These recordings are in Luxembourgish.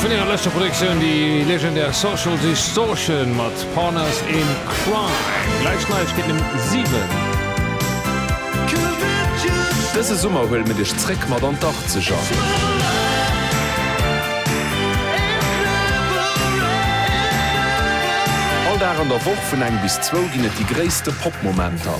Vun hirer leschter Produktioun déi legendär Social Distortion mat Partners in Crime. Gläich Neiegkeeten um 7. Dëse Summer huele mir dech zréck mat an d'Achtzeger. All Dag an der Woch vun eng bis zwou ginn et déi gréisste Pop-Momenter.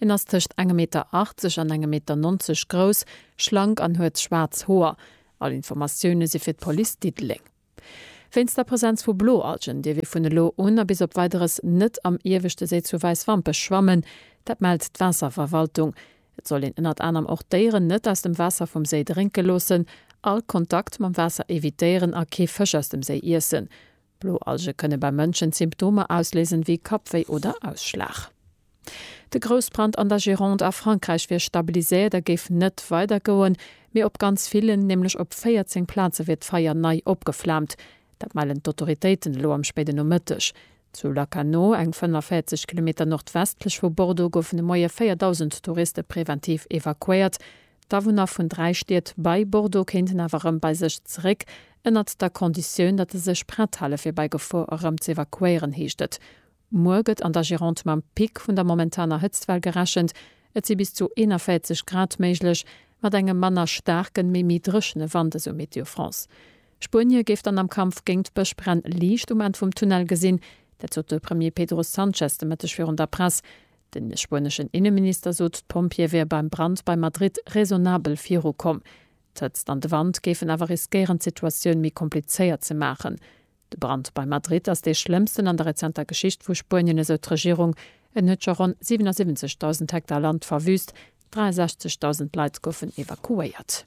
En ass tëscht engem Meter 80 an engem Meter 90 grouss, schlank an huet schwaarz Hoer. All Informatioune si fir d'Police Diddeleng. Wéinst der Presenz vu Bloalgen dierf ee vun elo un a bis op Weideres net am ieweschte Séi zu Wäiswampech schwammen. Dat mellt d'Waasserverwaltung. Et soll een ënnert anerem och d'Déieren net aus dem Waasser vum Séi drénke loossen, all Kontakt mam Waasser evitéieren a kee Fësch aus dem Séi iessen. Bloalge kënne beim Mënschen Symptomer ausléisen, wéi Kappwéi oder Ausschlag. De Groussbrand an der Gironde a Frankräich wier stabiliséiert a géif net weider goen, mee op ganz villen, nämlech op 14 Plaze wier d'Feier nei opgeflaamt. Dat mellen d'Autoritéiten elo am spéiden Nomëtteg. Zu Lacanau, eng 45 Kilometer nordwestlech vu Bordeaux, goufen de Moie 4.000 Touriste preventiv evakuéiert. D'Awunner vun dräi Stied bei Bordeaux kéinten awer erëm bei sech zeréck, ënnert der Konditioun, datt se sech prett hale fir bei Gefor erëm ze evakuéieren, heescht et. Muer gëtt an der Gironde mam Pic vun der momentaner Hëtztwell gerechent. Et si bis zu 41 Grad méiglech, mat engem manner staarken, mee méi dréchene Wand, esou Météo France. Spuenie géif dann am Kampf géint d'Bëschbränn Liicht um Enn vum Tunnel gesinn, dat sot de Premier Pedro Sanchez de Mëtteg virun der Press. De spueneschen Inneminister sot, d'Pompjeeë wiere beim Brand bei Madrid raisonnabel virukomm. D'Hëtzt an de Wand géifen awer riskéieren, d'Situatioun méi komplizéiert ze maachen. De Brand bei Madrid ass dee schlëmmsten an der rezenter Geschicht vu Spuenien, esou d'Regierung. En huet scho ronn 77.000 Hektar Land verwüüst, 63.000 Leit goufen evakuéiert.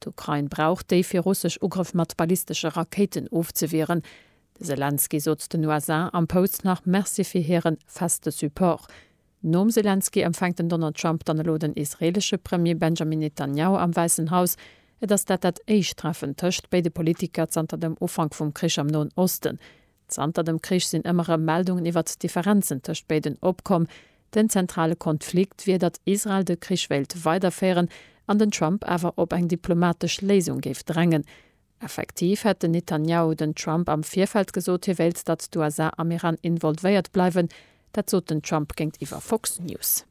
D'Ukrain brauch déi fir russesch Ugrëff mat ballistesche Rakéiten ofzewieren. De Selenskyj sot den USA am Post nach Merci fir hire feste Support. Nom Selenskyj empfänkt den Donald Trump dann elo den israeelesche Premier Benjamin Netanjahu am Wäissen Haus. Et ass dat dat éischt Treffen tëscht béide Politiker zanter dem Ufank vum Krich am Noen Osten. Zanter dem Krich sinn ëmmer erëm Meldungen iwwert d'Differenzen tëscht béiden opkomm. Den zentrale Konflikt wier, datt Israel de Krich wéilt weiderféieren an den Trump awer op eng diplomatesch Léisung géif drängen. Effektiv hätt den Netanjahu den Trump am Virfeld gesot, hie wéilt, datt d'USA am Iran involvéiert bleiwen. Dat sot den Trump géintiwwer Fox News.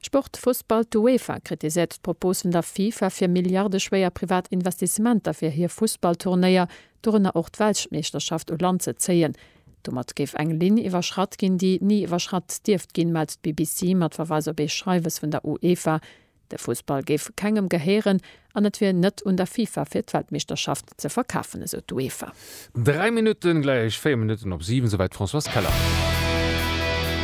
Sport, Fussball, D'Uefa kritiséiert d'Propos vun der FIFA fir milliardeschwéier privat Investissementer fir hir Fussballturnéier, dorënner och d'Weltmeeschterschaft, u Land ze zéien. Domat géif eng Linn iwwerschratt ginn, déi ni iwwerschratt dierft ginn, mellt d'BBC mat Verweis op ee Schreiwes vun der Uefa. De Fussball géif kengem gehéieren, an et wier net un der FIFA fir d'Weltmeeschterschaft ze verkafen, esou d'UEFA. Dräi Minutten gläich véier Minutten op siwen, souwäit d'Françoise Keller.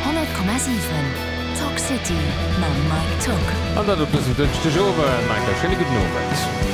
100,7 Talk City mam Mike Tock. An dat op dësem Dënschdegowend. Mike, e schéine gudden Owend.